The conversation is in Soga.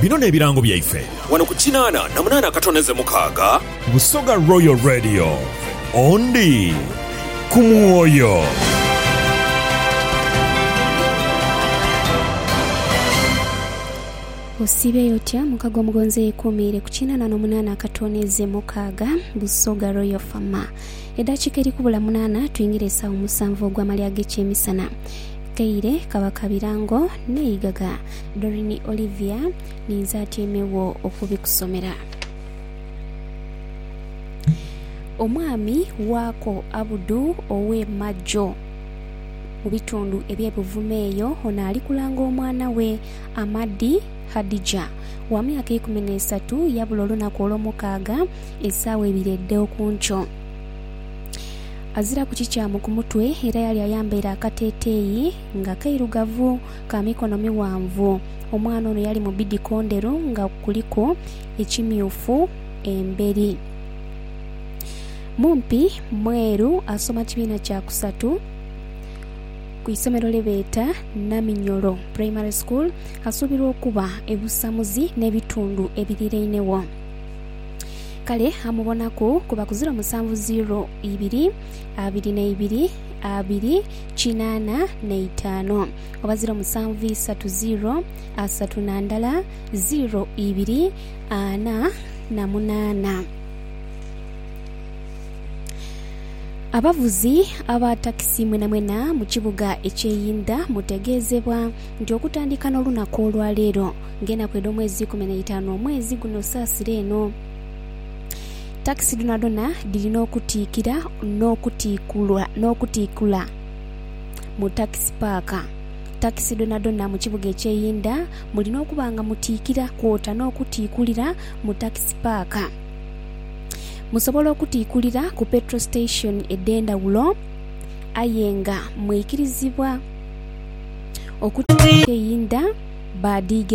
Bino n'ebirango byaife. Wano ku kinaana na munaana akatoneze mukaaga. Busoga Royal Radio, Ondi ku mwoyo. Osiibye y'otya mukago omugonzi eyekuumiire ku kinaana n'omunaana akatoneze mukaaga, Busoga Royal FM. Edaakiika eri kubula munaana twingire esaawa omusanvu ogw'amalya ag'ekyemisana. Teire Kabaka birango n'eigaga. Doreen Olivia, Ninze atyaime wo okubikusomera. Omwami waako Abudu ow'e Majo, mu bitundu eby'e Buvuma eyo, ono ali kulanga omwana we Amadi Hadijah wa myaka eikumi n'esatu yabula olunaku Olwomukaaga esaawa ibiri edh'oku nkyo. Aziraku kikyamu ku mutwe era yali ayambaire akateeteeyi nga kairugavu ka mikono mighanvu. Omwana ono yali mu bidiko ndheru nga kuliku ekimyufu emberi. Mumpi mweru asoma kibiina kya kusatu ku isomero lye beeta Naminyoro Primary School. Asuubirwa okuba ebusamuzi n'ebitundu ebirirainegho. Kale amubonaku, kuba ku ziro musanvu ziro ibiri, abiri na ibiri, abiri kinaana na itaanu, oba ziro musanvu isatu ziro asatu na ndala, ziro ibiri ana na munaana. Abavuzi aba takisi mwenamwena mu kibuga eky'e Yinda mutegeezebwa nti okutandika n'olunaku olwaleero, Ng'enaku edh'omwezi ikumi n'eitaanu omwezi guno saasira eno. Takisi dhonadhona dhirina okutiikira n'okutiikula mu takisi paaka. Takisi dhonadhona mu kibuga eky'eyindha mulina okuba nga mutiikira kwota n'okutiikulira mu takisi paaka. Musobola okutiikulira ku petrol station edh'endhawulo aye nga mwikirizibwa okutiikira mu kibuga eky'eyindha.